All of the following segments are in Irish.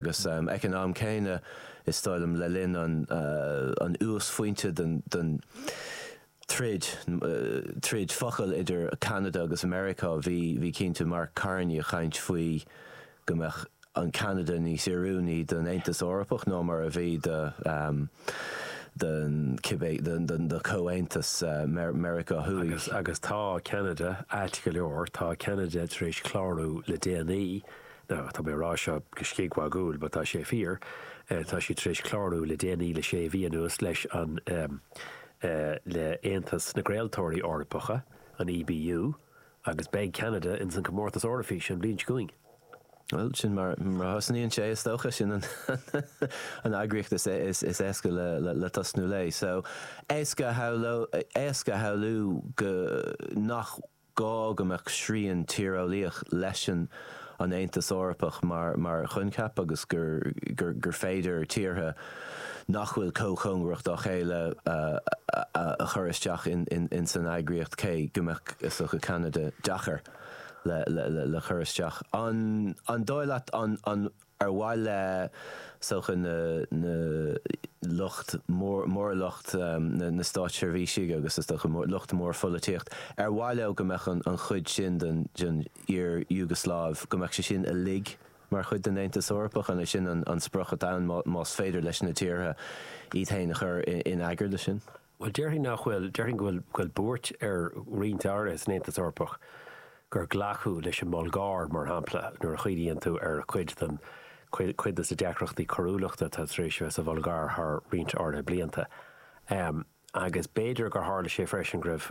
Agus ag an am céanna, is dóigh liom, le linn an uasphointe den troid, troid focal idir Ceanada agus Meiriceá, bhí cinnte Mark Carney ag caint faoi go mbeadh Ceanada níos oiriúnaí don Aontas Eorpach ná mar a bhí don cibé, don Chomhaontas Meiriceá Thuaidh. Agus tá Ceanada ait go leor, tá Ceanada tar éis clárú le déanaí Now, tá mé a rá seo go scigmhagúil, but tá sé fíor, tá siad tar éis clárú le déanaí, le sé mhí anuas, leis an, ahem, le hAontas na gCraoltóirí Eorpacha, an EBU, agus beidh Ceanada ins an Comórtas Eoraifíse an bhliain seo chugainn. Bhuel, sin mar a thosnaíonn sé, is dócha. Sin an eagraíocht is éasca le tosnú léi. So, éasca a shamhlú go, nach, gá go mbeadh srian tíreolaíoch leis an an Aontas Eorpach mar choincheap agus gur féidir tíortha nach bhfuil chomh cóngarach dá chéile a chur isteach ins an eagraíocht cé go mbeadh, is dócha, Ceanada deacair le cur isteach. An dóigh leat an. Ar mhaith le, is dócha, na na lucht mór, lucht na státseirbhísigh agus is dócha lucht mór pholaitíocht, ar mhaith leo go mbeadh an chuid sin den iar-Iúgasláiv, go mbeadh sé sin uilig mar chuid den Aontas Eorpach? An é sin an sprioc atá ann, más féidir leis na tíortha iad féin a chur in eagar do sin? Bhuel, déarfainn nach bhfuil. Déarfainn go bhfuil buairt ar roinnt áirithe san Aontas Eorpach gur glacadh leis an mBulgáir, mar shampla, nuair a chuimhníonn tú ar chuid de na deacrachtaí coiriúlachta atá tar éis a bheith sa Bhulgáir thar roinnt áirithe blianta. Agus b'fhéidir gur tharla sé freisin go raibh.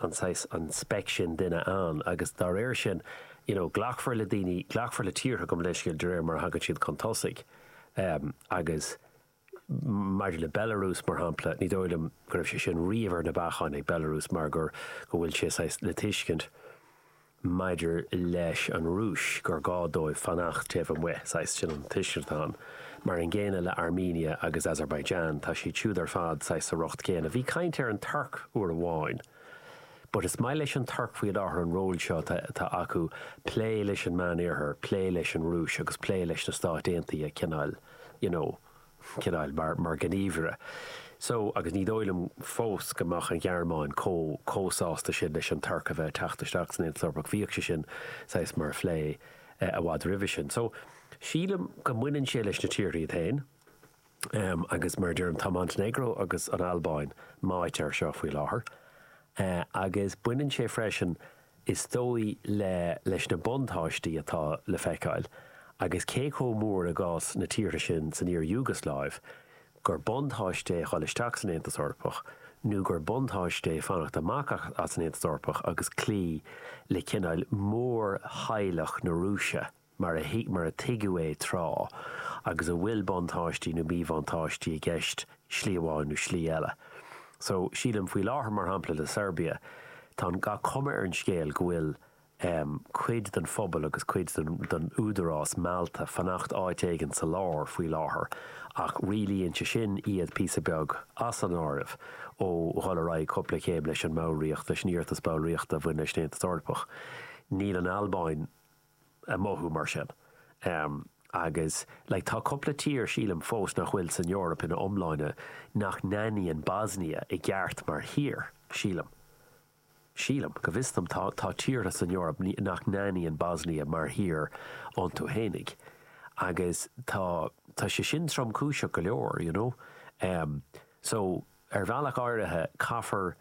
an saghas, an speiceas sin de dhuine ann agus dá réir sin you know glacfar le daoine, glacfar le tíortha go leithscéal de réir mar a thagann siad chun tosaigh em agus maidir le Belarus mar shampla ní dóigh liom go raibh sé sin riamh ar na bacáin ag Belarus mar gur go bhfuil sé saghas le tuiscint maidir leis an Rúis, gur gá dóibh fanacht taobh amuigh, saghas, sin an tuiscint atá ann. Mar an gcéanna le Armenia agus Azerbaijan, tá siad siúd ar fad saghas sa riocht céanna. Bhí caint ar an Tuirc uair amháin. But is maith leis an Tuirc faoi láthair an ról seo atá acu, plé leis an Meánoirthear, plé leis an Rúis agus plé leis na Stáit Aontaithe cineáil, you know. chineál mar ghníomhaire. So, agus ní dóigh liom fós go mbeadh an Ghearmáin chomh chomh sásta sin leis an Tuirc a bheith ag teacht isteach san Aontas Eorpach, bhíodh sé sin saghas mar phlé i bhfad roimhe sin. So, sílim go mbaineann sé leis na tíortha iad féin. Agus mar a deirim, tá Montainéagró agus an Albáin meáite air seo faoi láthair. Agus baineann sé freisin Is dóigh liom leis na buntáistí atá le feiceáil, agus cé chomh mór i gcás na tíortha sin san iar-Iúgasláiv, gur buntáiste é dhul isteach san Aontas Eorpach nó gur buntáiste é fanacht amach as an Aontas Eorpach agus cloí le cineál mórtheaghlach na Rúise. mar a thuig, mar a tuigeadh é tráth, agus a bhfuil buntáistí nó míbhuntáistí i gceist slí amháin nó slí eile. So, sílim, faoi láthair, mar shampla, le Seirbia, tá an, tá cuma ar an scéal go bhfuil ehm, cuid den phobal agus cuid den, den údarás meallta fanacht áit éigin sa lár faoi láthair ach rialaíonn sé sin iad píosa beag as an áireamh ó dhul ar aghaidh cúpla céim leis an mballraíocht, leis an iarratas ballraíochta a bhain leis an Aontas Eorpach. Níl an Albáin. a mhothú mar sin. Agus like tá cúpla tír, sílim, fós nach bhfuil san Eoraip ina iomláine, nach n-aithníonn Bosnia i gceart mar thír, sílim. Sílim. Go bhfios dom, tá tá tíortha san Eoraip nach n-aithníonn Bosnia mar thír iontu fhéinig. Agus tá tá sé sin tromchúiseach go leor, you know. So ar bhealach áirithe caithfear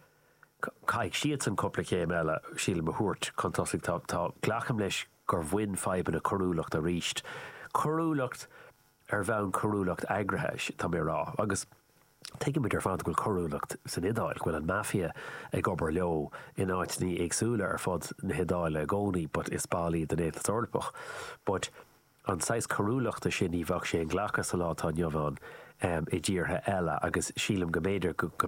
Caithfidh siadsan cúpla céim eile, sílim, a thabhairt chun tosaigh. Tá, tá, glacaim leis gur bhain fadhbanna coiriúlacht arís, coiriúlacht ar bhonn coiriúlacht eagraithe, tá mé a rá. Agus tuigeann muid ar fad go bhfuil coiriúlacht san Iodáil, go bhfuil an Mafia ag obair leo in áiteannaí éagsúla ar fud na hIodáile i gcónaí but is ball iad den Aontas Eorpach. But an saghas coiriúlachta sin, ní bheadh sé inghlactha sa lá atá inniu ann i dtíortha eile agus sílim go mb'fhéidir go, go,